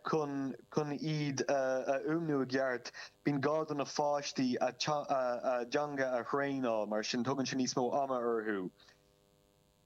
Chun iad a fhuaimniú i gceart, bíonn gá do na pháistí a dteanga a thraenáil, mar sin tógann sé níos mó ama orthu.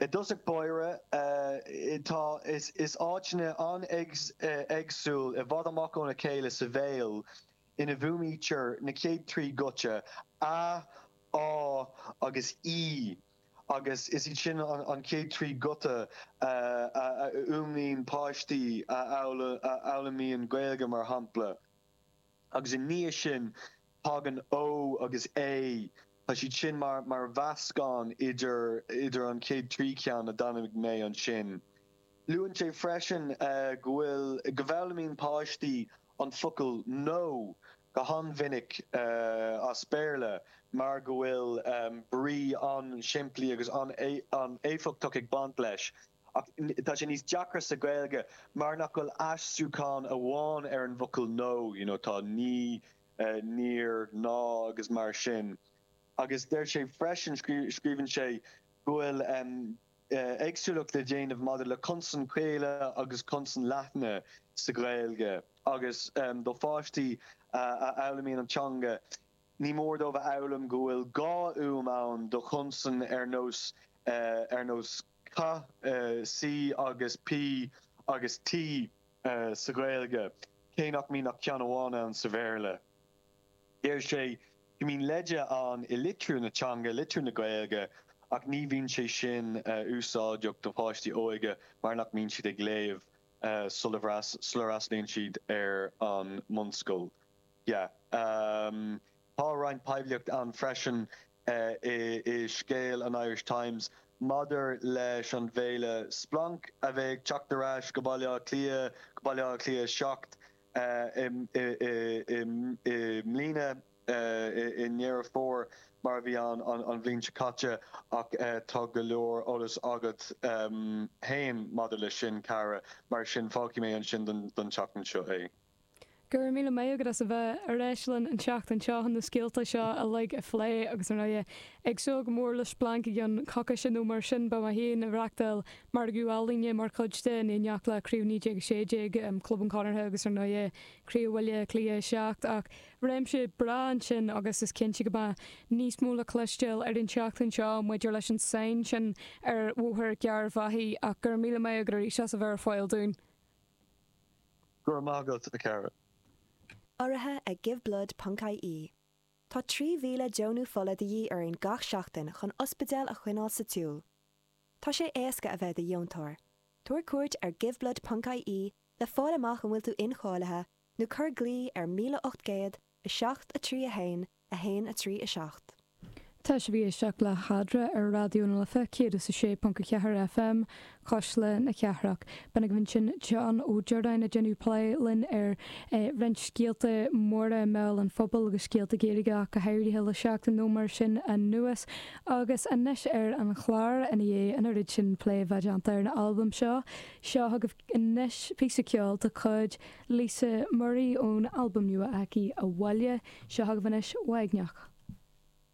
I dtosach báire, tá áiteanna an-éagsúil i bhfad amach óna chéile sa bhéal ina bhfuaimnítear na chéad trí ghuta, a, ú agus í. agus is iad sin an chéad trí ghuta a fhuaimníonn páistí a fhoghlaimíonn Gaeilge, mar shampla, agus ina dhiaidh sin tagann Ó agus É, tá siad sin mar mheascán idir an chéad trí cheann a d'ainmnigh mé ansin. Luann sé freisin go bhfuil, go bhfoghlaimíonn páistí an focal 'No' go han-mhinic as Béarla mar go bhfuil brí an-simplí agus an-éifeachtach ag baint leis. Ach tá sé níos deacra sa Ghaeilge mar nach bhfuil aistriúchán amháin ar an bhfocal 'No', you know, tá 'Ní', 'Níor', 'Ná' agus mar sin. Agus deir sé freisin, scríobhann sé, go bhfuil. éagsúlacht le déanamh maidir le consain chaola agus consain leathna sa Ghaeilge agus do pháistí a fhoghlaimíonn an teanga ní mór dóibh a fhoghlaim go bhfuil dhá fhuaim ann do chonsain ar nós ar nós ca, C agus P agus T sa Ghaeilge cé nach mbíonn ach ceann amháin ann sa Bhéarla. Deir sé go mbíonn leide ann i litriú na teanga, litriú na Gaeilge, ach ní bhíonn sé sin úsáideach do pháistí óga mar nach mbíonn siad ag léamh sula bhfreastalaíonn siad ar an mbunscoil. Em, tá roinnt poiblíocht ann freisin i scéal an Irish Times maidir leis an bhféile Splanc a bheidh ag teacht ar ais go Baile Átha Cliath, go Baile Átha Cliath 7, i mbliana i nDeireadh Fómhair mar a bhí an bhliain seo caite ach tá go leor eolas agat féin maidir leis sin, a Chiara, mar sin fágfaidh mé ansin don tseachtain seo é. Go raibh míle maith agat as a bheith ar ais linn an tseachtain seo chun na scéalta seo uilig a phlé agus, ar ndóigh, ag súil go mór le Splanc i gceann coicíse nó mar sin, beidh mé féin ag reachtáil margadh ealaíne mar chuid de, in éineacht le Craobh 1916, Club an Chonartha agus ar ndóigh, Craobh Bhaile Átha Cliath 7. Ach réimse breá ansin agus is cinnte go mbeidh níos mó le cloisteáil ar an tseachtain seo maidir leis an sainn sin ar Bhóthar Gharbhachaidh. Ach go raibh míle maith agat arís as a bheith ar fáil dúinn. Go raibh maith agat, a Chiara. Urraithe ag GiveBlood ponc IE, Tá 3,000 deonú fola de dhíth orainn gach seachtain chun ospidéil a choinneáil sa tsiúl. Tá sé éasca a bheith do dheontóir. Tabhair cuairt ar giveblood ponc IE le fáil amach an bhfuil tú incháilithe nó cuir glao ar 1807 3 1 1 3 7. Tá sibh ag éisteacht le Hadra ar Raidió na Life 106.4 FM, Cuisle na Cathrach. B'in agaibh ansin John Ó Direáin ag déanamh plé linn ar roinnt scéalta móra i mbéal an phobail agus scéalta Gaeilge ach go háirithe le seachtain nó mar sin anuas. Agus anois ar an chlár, i ndiaidh an oiread sin plé bheith déanta ar an albam seo, seo chugaibh anois píosa ceoil de chuid Lisa Murray ón albam nua aici, 'Abhaile'. Seo chugaibh anois 'Uaigneach'.